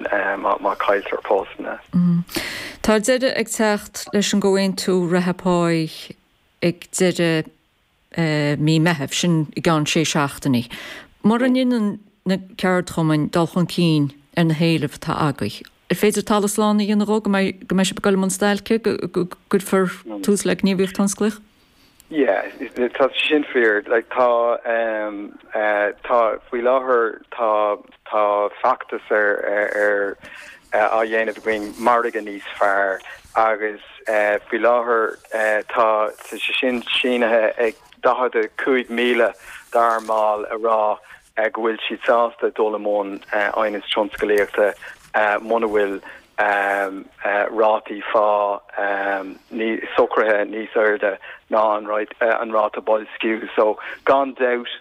má chailltear postanna. Tá deireadh ag teacht leis an gcomhaontú reatha páí ag deireadh mí Meithimh, sin i gceann sé seachtainí. Mura ndéanann na ceardchumainn dul chun cinn ar na héilimh atá agaibh, ar féidir talamh slán a dhéanamh dhó go mbeidh sibh ag goil i mbun stailce, go gcuirfear tús le gníomhaíocht thionsclaíoch? Yeah, tá sé sin fíor. Like, tá, um, uh, tá, faoi láthair, tá, tá feachtas ar, ar, ar uh, á dhéanamh againn margadh níos fearr agus uh, faoi láthair uh, tá sé sin sínithe ag 45,000 dár mbaill a rá go bhfuil siad sásta dul i mbun aighneas tionsclaíochta muna bhfuil rátaí phá socraithe níos airde ná an ráta boilsciú. So gan dabht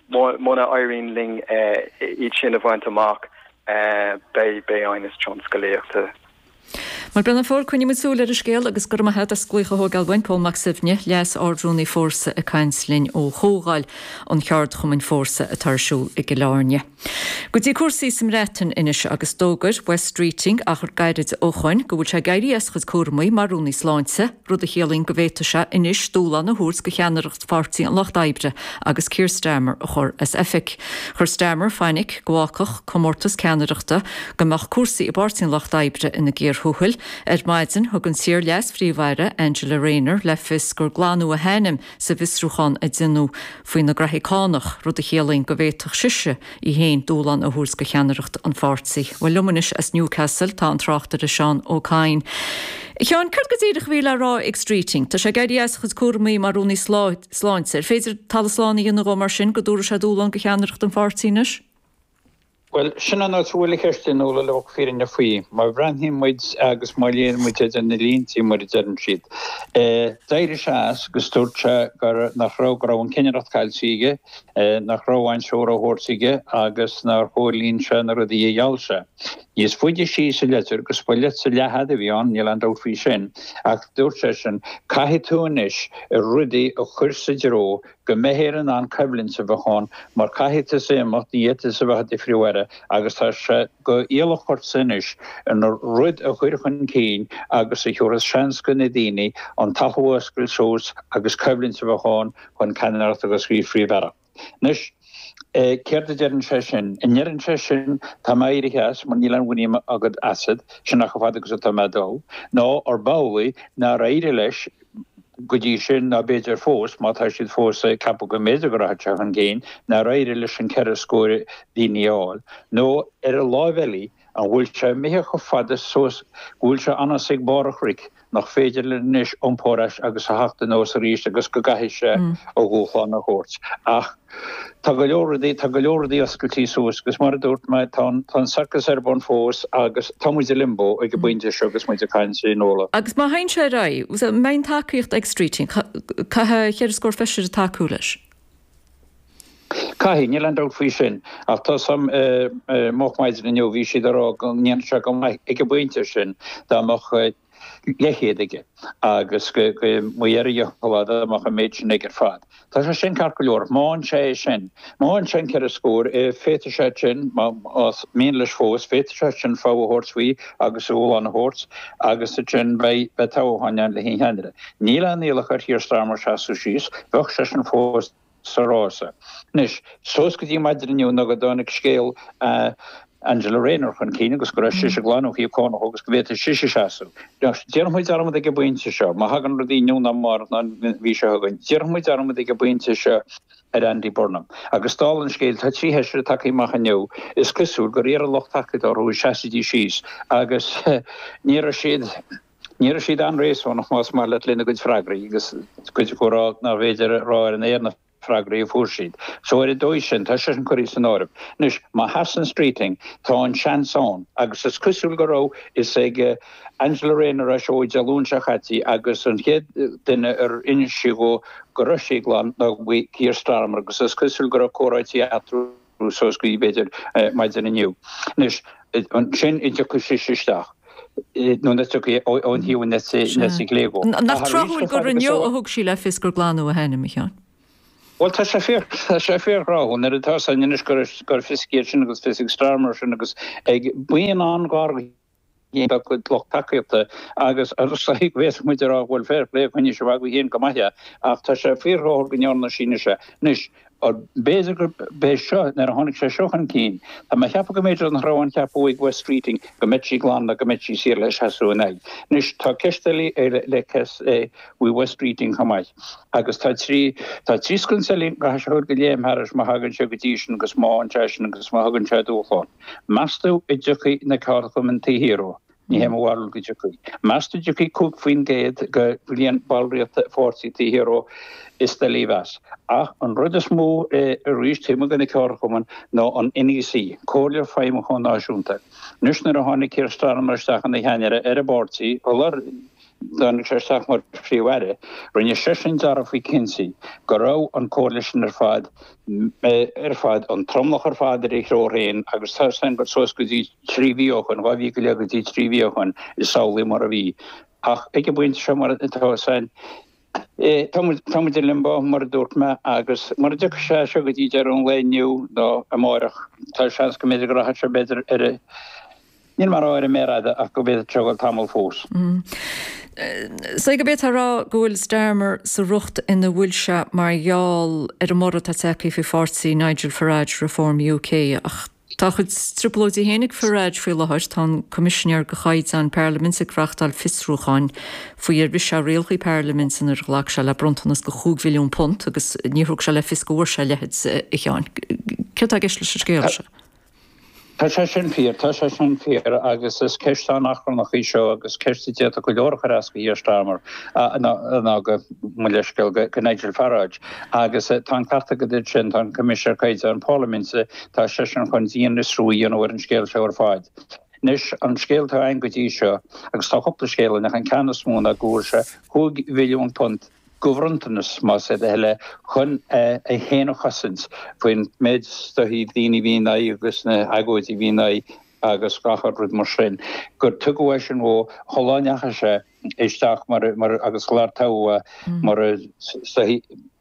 muna éiríonn linn iad sin a bhaint amach beidh, beidh aighneas tionsclaíochta. Mar Brennan Ford, coinneoidh muid súil ar an scéal agus go raibh maith agat as glaoch a thógáil uainn, Paul Mac Suibhne, Leas-Ard-Rúnaí Fórsa ag caint linn ó Chomhdháil an Cheardchumainn Fórsa atá ar siúl i gCill Áirne. Go dtí cúrsaí sa mBreatain anois agus d'fhógair Wes Streeting, achar gairid ó shoin, go bhfuil sé ag éirí as a chuid cúramaí mar Rúnaí Sláinte. rud a chiallaíonn go bhféadfadh sé anois dúshlán a thabhairt do cheannaireacht Pháirtí an Lucht Oibre agus Keir Starmer a chur as oifig. Chuir Starmer fainic go bhfágfadh comórtas ceannaireachta go mbeadh cúrsaí i bPáirtí an Lucht Oibre ina gcíor thuathail. Ar maidin, thug an t-iar-leas-phríomh-aire Angela Rayner le fios gur glanadh a hainm, sa bhfiosrúchán a déanadh faoina graithí cánach, rud a chiallaíonn go bhféadfadh sise í féin dúshlán a thabhairt do cheannaireacht an pháirtí. Bhuel, liom anois as Newcastle, tá an tráchtaire Seán Ó Cadhain. A Sheáin, céard go díreach a bhí le rá ag Streeting? Tá sé ag éirí as a chuid cúramaí mar Rúnaí Sláinte. Ar féidir talamh slán a dhéanamh dhó mar sin, go dtabharfaidh sé dúshlán go cheannaireacht an pháirtí anois? Bhuel, sin an áit a bhfuil an cheist sin uilig, fírinne faoi. Má bhreathnaíonn muid agus má léann muid idir na líntí, mar a deireann siad, eh, d'éirigh sé as agus dúirt sé gur, nach raibh, go raibh an cinnireacht caillte aige, eh, nach raibh aon treoir á thabhairt aige agus nár chomhlíon sé na rudaí a gheall sé. Níos faide síos sa leitir, agus ba leitir leathfhada a bhí ann, níl aon dabht faoi sin, ach dúirt seisean, caithfidh tú anois rudaí a chur sa dtreo go mbeifear in ann coimhlint a bheith ann mar caithfidh tusa imeacht, ní fhéadfaidh tusa a bheith i do phríomh-aire agus tá sé go iallach ortsa anois an rud a chur chun cinn agus a thabharfas seans go na daoine an t-athfhuascailt suas agus coimhlint a bheith ann chun ceannaireacht agus an phríomh-aireacht. Anois céard a deireann sé sin? An ndeireann sé sin tá mé éirithe as mar níl aon mhuinín agam asat, sin chomh fada agus atá mé ag dul, nó arbh amhlaidh nár éirigh leis, go dtí sin, ná b'fhéidir fós, má tá siad fós ag ceapadh go mb'fhéidir go rachadh sé chun cinn, nár éirigh leis an ceithre scór daoine a fháil. Nó, ar an láimh eile, an bhfuil sé imithe chomh fada suas go bhfuil sé anois ag barr an chnoic, nach féidir linn anois iompú ar ais agus a theacht anuas arís agus go gcaithfidh sé a dhúshlán a thabhairt? Ach. Tá go leor rudaí, tá go leor rudaí oscailtí suas agus mar a dúirt mé, tá an, tá an sorcas ar bun fós agus tá muid i limbo ag an bpointe seo agus muid ag caint, a Fhionnuala. Agus má théann sé ar aghaidh, an mbeidh tacaíocht ag Streeting, caithfidh cheithre scór feisire tacú leis. Caithfidh, níl aon dabht faoi sin. Ach tá fhios agam, moch maidin inniu, bhí siad ag rá go ndéanfadh sé go maith ag an bpointe sin dá mbeadh, leathchéad aige agus go mbeidh air a dhícheall a dhéanamh ach an méid sin aige ar fad. Tá sé sin ceart go leor. Má fhaigheann sé sin, má fhaigheann sé an ceithre scór, féadfaidh seisean, más mian leis fós, féadfaidh seisean fogha a thabhairt faoi agus a dhúshlán a thabhairt agus ansin beidh toghchán ann le haghaidh ceannaire. Níl aon iallach ar Keir Starmer seasamh síos. Bheadh seisean fós. sa rása. Anois, suas go dtí maidin inniu nó go dtáinig scéal Angela Rayner chun cinn agus go raibh sise glan ó thaobh cánach agus go bhféadfadh sise seasamh. Déanfaidh muid dearmad ag an bpointe seo, má thagann rudaí inniu ná amárach ná an mhí seo chugainn, déanfaidh muid dearmad ag an bpointe seo ar Andy Burnham. Agus dála an scéil, tá trí fheisire tagtha amach inniu, is cosúil gur iarr a lucht tacaíochta orthu an seasfaidís síos agus ní raibh siad. Ní raibh siad an-réasúnach, más maith leat, lena gcuid freagraí, agus cuid acu ag rá nárbh fhéidir a rá ar an aer na freagraí a fuair siad. So, ar an dóigh sin, tá seisean curtha as an áireamh. Anois, má sheasann Streeting, tá an seans ann, agus is cosúil go raibh fhios ag Angela Rayner é seo ó Dé Luain seo chaití, agus an chéad duine ar inis sí dhó go raibh sí glan ná Keir Starmer, agus is cosúil go raibh comhráití eatarthu. suas go dtí, b'fhéidir, maidin inniu. Anois, ansin an dtiocfaidh sise isteach, nó nach dtiocfaidh, ó thaobh na heite clé dhó. Nach tráthúil gur inniu a thug sí le fios gur glanadh a hainm, a Sheáin? Bhuel, tá sé fíor, tá sé fíorthráthúil, nuair atá fhios againn anois go raibh fhios aici é sin agus fhios ag Starmer é sin agus ag buíon an-ghar. Ní beag a gcuid lucht tacaíochta agus féadfaidh muid a rá go bhfuil fair play acu anois, a mhagadh féin go maith é, ach tá sé fíordhóbair go ndearna Sines é. Anois, b'fhéidir gurb é seo, nuair a tháinig sé seo chun cinn, tá mé a cheapadh go mb'fhéidir nach raibh aon cheapadh ag Wes Streeting go mbeadh sí glan nó go mbeadh sí saor le seasamh ina aghaidh. Anois, tá ceist eile le cur faoi Wes Streeting chomh maith, agus tá trí, tá trí sconsa eile, a gcaithfidh sé a dhul de léim thairis má thagann sé go dtí sin agus má fhaigheann sé sin agus má thugann sé an dúshlán. Meas tú an dtiocfaidh na ceardchumainn taobh thiar dhó? Ní hé mo bharúil go dtiocfaidh. Meas tú an dtiocfaidh 5 faoin gcéad de líon ballraíochta an pháirtí taobh thiar dhó? Is doiligh a mheas. Ach an rud is mó arís taobh amuigh de na ceardchumainn ná an NEC, Comhairle Feidhmiúcháin Náisiúnta. Anois nuair a tháinig Keir Starmer isteach ina cheannaire ar an bpáirtí, shular Tháinig sé isteach mar Phríomh-Aire. Rinne seisean dearmhad faoi Kinsey, go raibh an Coalition ar fad, ar fad, an tromlach ar fad ar a threoir féin agus tá san go suas go dtí trí mhí ó shoin, dhá mhí go leith go dtí trí mhí ó shoin, is amhlaidh mar a bhí. Ach ag an bpointe seo mar atá sé, Tá muid i Limbo, mar a dúirt mé, agus mura dtiocfaidh sé seo go dtí deireadh an lae inniu nó amárach, tá seans go mb'fhéidir go rachaidh sé, b'fhéidir, ar a, níl mé a rá ar an méar fhada, ach go mb'fhéidir go bhfuil tamall fós. Sea, go bhféadfá a rá go bhfuil Starmer sa riocht ina bhfuil sé mar gheall ar an mborradh atá tagtha faoi pháirtí Nigel Farage, Reform UK, ach, Tá a chuid trioblóidí féin ag Farage faoi láthair, tá an Coimisinéir do Chaighdeáin Parlaiminte ag reáchtáil fiosrúcháin faoi ar bhris sé rialacha Parlaiminte nuair a ghlac sé le bronntanas de chúig mhilliún punt agus níor thug sé le fios go bhfuair sé a leithid. A Sheáin, céard tá i gceist leis an scéal seo? Tá sé sin fíor, tá sé sin fíor agus is ceist an-achrannach í seo agus ceist a d'fhéadfadh go leor a chur as go Keir Starmer ná go, mo leithscéal, go Nigel Farage. Agus tá an ceart agat go dtí sin, tá an Coimisinéir Caighdeáin Parlaiminte, Tá seisean chun dianfhiosrú a dhéanamh ar an scéal seo ar fad. Anois, an scéal atá againn go dtí seo, agus tá cúpla scéal ann, ach an ceann is mó ná go bhfuair sé cúig mhilliún punt, de bhronntanas, más é do thoil é, chun é féin a chosaint faoin méid droch-dhaoine a bhí ina aghaidh agus na hagóidí a bhí ina aghaidh agus 'chaon rud mar sin, gur tugadh é sin dhó, sular ndeachaigh sé. isteach mar, agus sular toghadh mar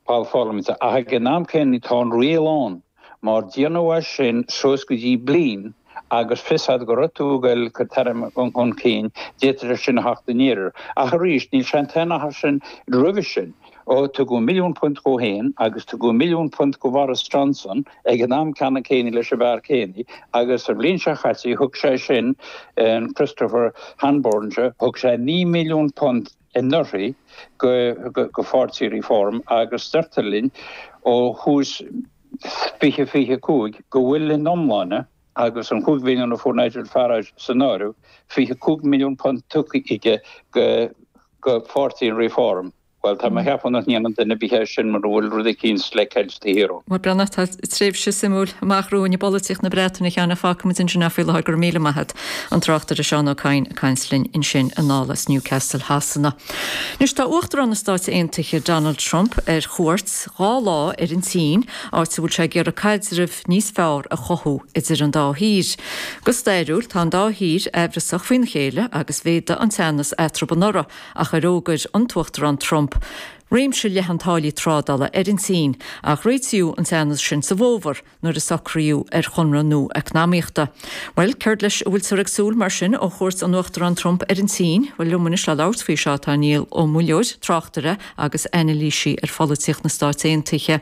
Ball Pharlaiminte, ach ag an am céanna tá an riail ann mar dá ndéanfaí é sin suas go dtí bliain agus fios agat go raibh tú ag dul dhod chur chun cinn, d'fhéadfadh sé sin a theacht aniar. Ach arís, níl seantaithí ar sin roimhe sin. Ó, tugadh milliún punt dhó fhéin, agus tugadh milliún punt go Bhoris Johnson, ag an am ceannann céanna, leis an bhfear céanna, agus sa bhliain seo chaite, thug sé sin, an Christopher Hanborn seo, thug sé naoi milliún punt anuraidh go Pháirtí Reform, agus deirtear linn, ó thús 2025, go bhfuil, in iomláine, agus an cúig mhilliún a fuair Nigel Farage san áireamh, fiche cúig milliún punt tugtha aige go Pháirtí an Reform. Bhuel, tá mé a cheapadh nach ndéanann duine ar bith é sin mura bhfuil rud eicínt le ceilt de shíor ann. Tá tréimhse suimiúil amach romhainn i bpolaitíocht na Breataine cheana. Fágfaimid ansin é faoi láthair. Go raibh míle maith agat, an tráchtaire Seán Ó Cadhain, ag caint linn ansin anall as Newcastle Shasana. Anois, tá Uachtarán na Stáit Aontaithe, Donald Trump, ar chuairt dhá lá ar an tSín, áit a bhfuil sé ag iarraidh caidreamh, níos fearr a chothú idir an dá thír. Go stairiúil, tá an dá thír aimhreasach faoina chéile agus mhéadaigh an teannas eatarthu anuraidh nuair a d'fhógair an tUachtarán Trump réimse leathan taraifí trádála ar an tSín ach réitíodh an teannas sin sa bhfómhar nuair a socraíodh ar chonradh nua eacnamaíochta. Bhuel, céard leis a bhfuiltear ag súil mar sin ó chuairt an Uachtaráin Trump ar an tSín? Bhuel, liom anois le labhairt faoi seo tá Niall Ó Muilleoir, tráchtaire, agus anailísí ar pholaitíocht na Stát Aontaithe.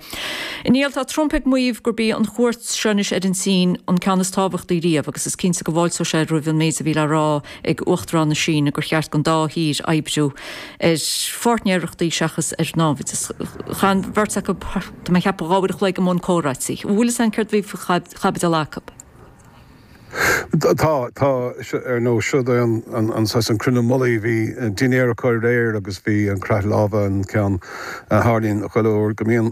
A Néill, tá Trump ag maíomh gurb í an chuairt seo anois ar an tSín an ceann is tábhachtaí riamh agus is cinnte go bhfáilteoidh sé roimh an méid a bhí le rá ag Uachtarán na Síne gur cheart don dá thír oibriú ar pháirtnéireachtaí seachas ar náimhdeas. Chaith an bheirt acu, de mo cheapadh, dhá uair a chloig i mbun comhráití. Bhfuil fhios againn céard a bhí faoi chaibidil acu? Tá, tá. Ar ndóigh, seo'd é an, an, an saghas, an cruinniú mullaigh. Bhí dinnéar acu aréir agus bhí an croitheadh láimhe an ceann a tharlaíonn chuile uair go mbíonn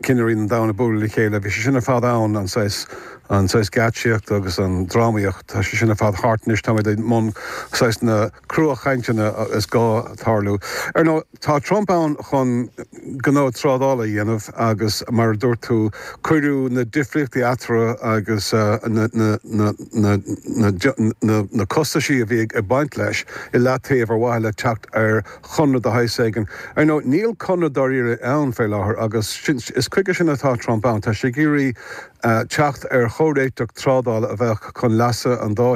cinnirí an domhain ag bualadh le chéile. Bhí sé sin ar fad ann, an saghas, an saghas geáitsíocht agus an drámaíocht, tá sé sin ar fad thart anois. Táimid i mbun saghas na cruachainteanna is gá tarlú. Ar ndóigh. Tá Trump ann chun gnó trádála a dhéanamh agus, mar a dúirt tú, cuireadh na difríochtaí eatarthu agus na costaisí a bhí ag baint leis i leataobh ar mhaithe le teacht ar chonradh de shaghas éigin. Ar ndóigh, níl conradh dáiríre ann fé láthair agus is chuige sin atá Trump ann, tá sé ag iarraidh teacht ar chomhréiteach trádála a bheadh chun leasa an dá